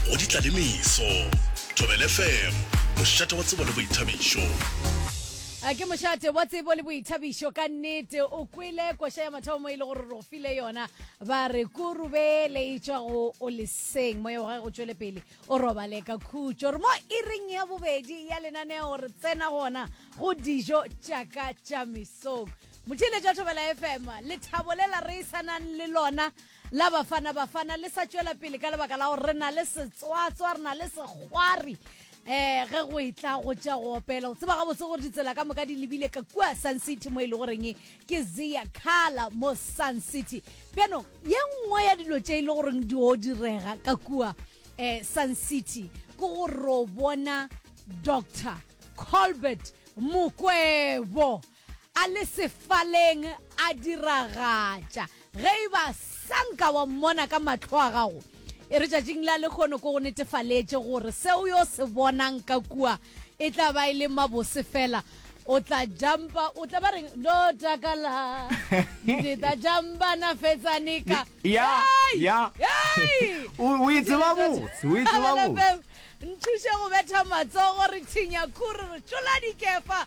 go ditlalemeso thobel fm mošate wa tsebo le boithabišo Eh, ke mošate wa tsebo le boithabišo ka nnete o kwele koša ya mathomo e le gore ro file yona ba re kurube le e tšwa go o leseng moya wa gage go tšwele pele o robale ka khutšo re mo iring ya bobedi ya lenaneo re tsena gona go dijo tšaka tša mesong mothiletša thobela fm lethabo le la re e sanang le lona La Bafana Bafana le sa tšwela pele ka lebaka la gore re na le setswatswa, re na le sekgwari um ge go etla go tša go opela o tseba gabotse gore ditsela ka moka di lebile ka kua sun city mo e le goreng ke zea kala mo sun city bjanong ye nngwe ya dilo tše e le goreng di o direga ka kua um sun city ke go ro bona doctor colbert mokwebo A le sefaleng a diragatša. Ge e ba sa nka wa mmona ka mahlo a gago, e re tšatšing la lekgono ke go netefaletše gore se o yo se bonang ka kua e tla ba e le mabose fela. O tla jampa, o tla ba reng, Lo takala, le tla jampa na fetsane ka. Ya, ya. Hei! O, o e tseba botse, o e tseba botse. Nthuše go betha matsogo re thinya khuri re tšola dikefa.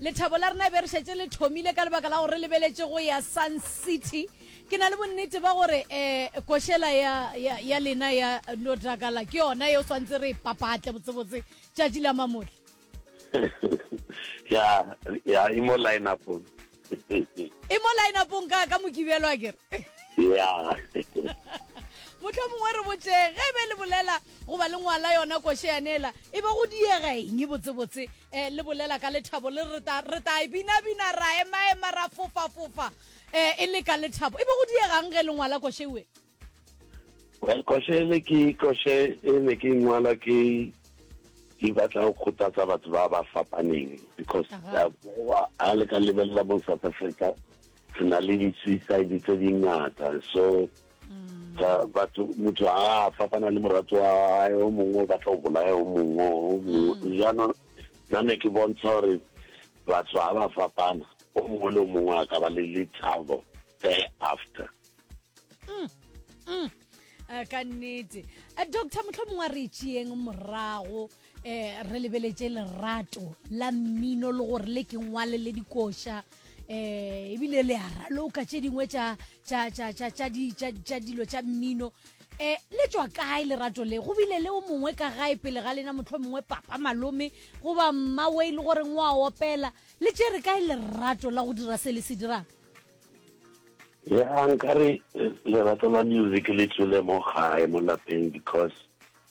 Lethabo la rena e be re šetše le thomile ka lebaka la gore re lebeletše go ya Sun City. Ke na le bonnete ba gore um košela ya, ya, ya lena ya no takala ke yona yeo swantse re e papatle botsebotse tšatši la mamotla. ya, ya e mo line-upong. e mo line-upong ka, ka mokibelo a kere. ya. Mohlomongwe re botše ge e be le bolela Go ba le ngwala yona koše ya nela e be go diega eng botsebotse? Eh, le bolela ka lethabo le re ta re ta e bina bina ra ema ema ra fofa fofa eh, e le ka lethabo e be go diegang ge le ngwala koše we? Well, koše e le ke koše e ne ke ngwala ke ke batla go kgothatsa batho ba ba fapaneng because Aha. uh, a le ka lebelela mo south africa re na le di-suicide tse dingata so ga batho motho a fapana le morato wa gae o mongwe o batla go bolaya o mongwe o mongwe mm. jaanong nna ne ke bontsha gore batho ga ba fapana o mongwe le o mongwe a ka ba le lethabo there after mm, mm. Eh, ka nnete eh, doctor motlho mongwe a re tšeeng morago um re lebeletše lerato la mmino le gore le ke ngwale le dikoša um ebile le a raloka tše dingwe tša tša tša tša tša di tša tša dilo tša mmino eh le tswa kae lerato le go bile le o mongwe ka gae pele ga lena motlho mongwe papa malome goba mmawe e le gore ngwa opela le tsere kae lerato la go dira se le se dirang ya nkare lerato la music le tswile mo gae mo lapeng because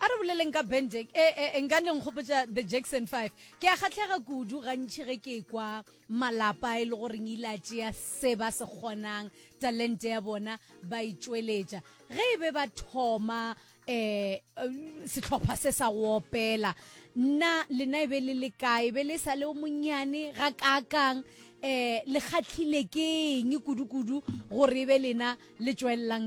a re boleleng ka ben jack e eh, eh, nka leng kgopotsa the jackson five ke a kgatlhega kudu gantši ge ke kwa malapa e le goreng ile a tšea se ba se kgonang talente ya bona ba e tšweletša ge e be ba thoma eh sehlopha se sa go opela nna lena e be le le kae be le sa le o monyane ga kaakang eh le kgatlhile ke eng kudu-kudu gore e be lena le tšwelelang ka